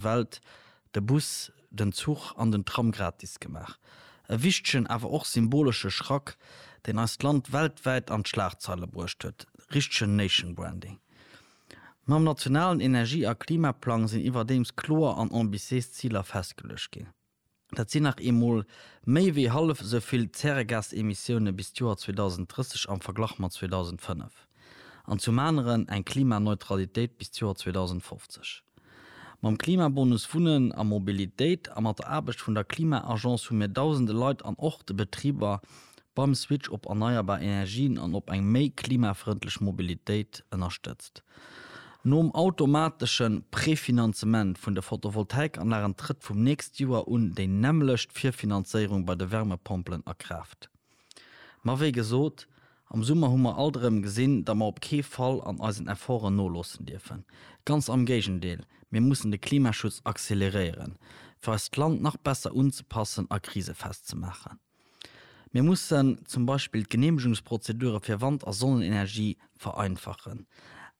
Welt de Bus, den Zuch an den Tram gratis gemaach. E wichtegen, awer och symbolesche Schrack, deen eist Land weltwäit an d'Schlagzeile bruecht huet. Richtegen Nation Branding. Mam nationalen Energie a Klimaplang sinn iwwerdeems kloer an ambitiéis Ziler festgeluecht ginn. Dat sinn nach eemol méi wéi hallef esou vill Zäregasemissioune bis d'Joer 2030 am Verglach mat 2005. An zum aneren eng Klimaneutralitéit bis d'Joer 2050. Mam Klimabonus Wunnen a Mobilitéit a mat der Aarbecht vun der Klima-Agence hu mir dausende Leit an och de Betriber beim Switch op erneierbar Energien an op eng méi klimafrëndlech Mobilitéit ënnerstëtzt. Nom automatesche Prefinanzement vun de Photovoltaikanlagen trëtt vum nächst Joer un déi nämmlecht Virfinanzéierung bei de Wärmepompelen a Kraaft. Ma wéi gesot, am Summer hu mer alt erëm gesinn, datt mer op kee Fall an eisen Efforten noloossen dierfen. Ganz am Géigendeel, mir mussen de Klimaschutz acceleréieren, fir eist Land nach besser unzepassen a krisefest ze maachen. Mir mussen zum Beispill d'Geneemegungsprozedure fir Wand a Sonnenenergie vereinfachen.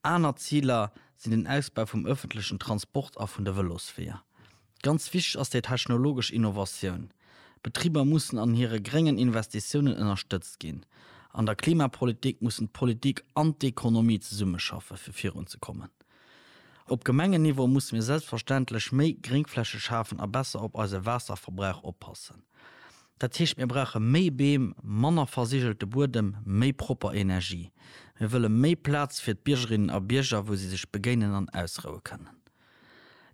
Aner Ziler sinn den Ausbau vum ëffentlechen Transport a vun de Vëlosweeër. Ganz wichteg ass déi technologesch Innovatioun. D'Betriber mussen an hire gréngen Investitiounen ënnerstëtzt ginn. An der Klimapolitik mussen d'Politik an d'Ekonomie zesummeschaffe fir virunzekommen. Op Gemengenniveau musse mir selbstverständlech méi Gréngfläche schafen a besser op eise Waasserverbrauch oppassen. Dat heescht, mir brauche méi Beem, manner versigelte Buedem, méi propper Energie. Mir wëlle méi Plaz fir d'Biergerinnen a Bierger, wou si sech begéinen an ausroue kënnen.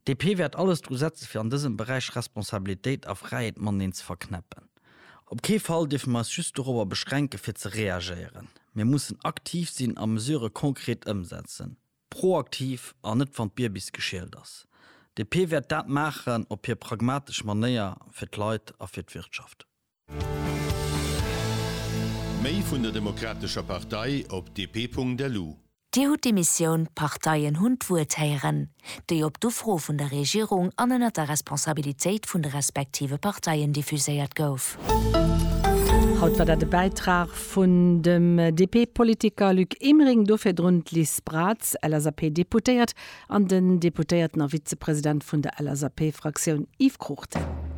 DP wäert alles dru setze fir an dësem Beräich Responsabilitéit a Fräiheet mateneen ze verknäppen. Op kee Fall dierfe mir eis just dorobber beschränke fir ze reagéieren. Mir mussen aktiv sinn a Mesure konkret ëmsetzen. Proaktiv an net wann d'Bierbis geschielt ass. DP wäert dat maachen op hir pragmatesch Manéier fir d'Leit a fir d'Wirtschaft. Méi vun der Demokratescher Partei op dp.lu. Dir hutt d'Emissioun D'Parteien hunn d'Wuert héieren, déi op d'Ufro vun der Regierung an ënner der Responsabilitéit vun de respektive Parteien diffuséiert gouf. Haut war dat e Bäitrag vun dem DP-Politiker Luc Emering, do virdrun d'Liz Braz, LSAP-Deputéiert, an den Deputéierten a Vizepresident vun der LSAP-Fraktioun Yves Cruchten.